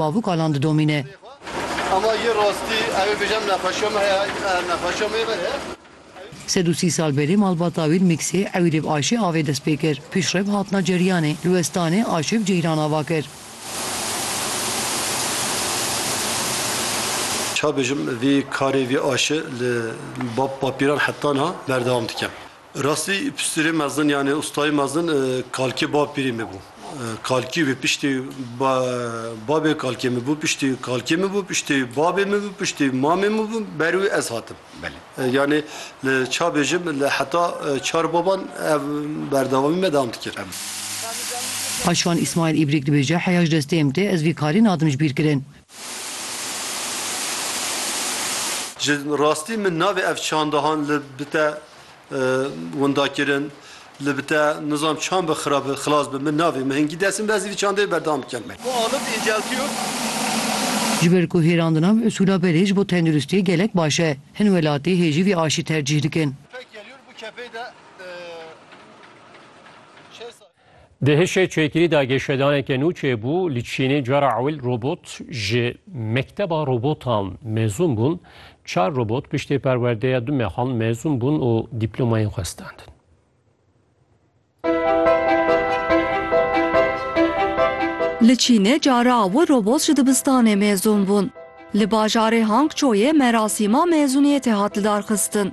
Bavûka lan didomîne. Ama yê rastî ew ê bêjim nexweşiya min heye, nexweşiya min ê ver e. Sed û sî sal berê malbata wî li Mîksê ewî rê bi Ayşê avê dest pê kir. Piştre bi hatina ceriyanê li Westanê Ayşê bi Ceyran ava kir. Çabêjim vî karê vî Ayşê li bapîran heta niha berdewam dikim. Rastî piştîrê mezin yanê ustayê mezin kalkê bapîrê min bû. Kalkî wê piştî babê kalkê min bû, piştî kalkê min bû, piştî babê min bû, piştî mamê min bû, ber wî ez hatim. Yanê li ça bêjim li heta çar baban ev berdewamî me dewam dikir. Paşvan Îsmaîl Îbrîk dibêje, Heya ji destê min tê, ez vî karî nadim ji bîrkirin. Ji rastî min navê ev çandahan li bi te windakirin, li bi te nizam çan bi xira bi xilas bi min navê. Min hingî dest bibez vî çandeyê berdewam bikin. Ku alib inceltiyo. Ji ber ku hêrandina bi usûla berê ji bo tenduristiyê gelek baş e. Hin welatî hê jî vî aştî tercîh dikin. Di hişê çêkirî de geşedaneke nû çêbû, li Çînê cara ewil robot ji mekteba robotan mezûn bûn, çar robot piştî perwerdeya du mehan mezûn bûn û dîplomayên xwe standin. Li Çînê cara ewil robot ji dibistanê mezûn bûn. Li bajarê Hangçoyê merasîma mezûniyetê hat lidarxistin.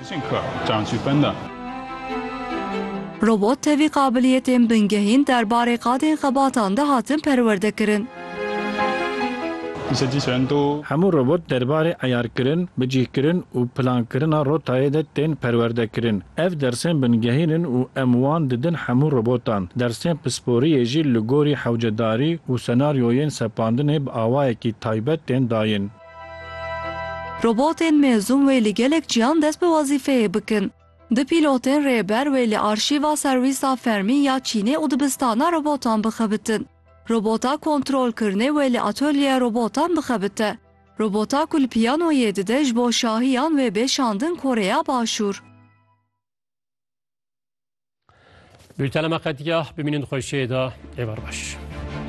Robot tevî qabiliyetên bingehîn derbarê qadên xebatan de hatin perwerdekirin. Hemû robot derbarê eyarkirin, bicîhkirin û plankirina rotayê de tên perwerdekirin. Ev dersên bingehîn in û em wan didin hemû robotan. Dersên pisporiyê jî li gorî hewcedarî û senaryoyên sepandinê bi awayekî taybet tên dayîn. Robotên mezûm wê li gelek ciyan dest bi wezîfeyê bikin. Du pîlotên rêber wê li arşîva serwîsa fermî ya Çînê û dibistana robotan bixebitin. Robota kontrolkirinê wê li atolyeya robotan bixebite. Robota ku li piyanoyê dide ji bo şahiyan wê bê şandin Koreya Başûr. Bültena me qetiya, bimînin xweşiyê de, êvar baş.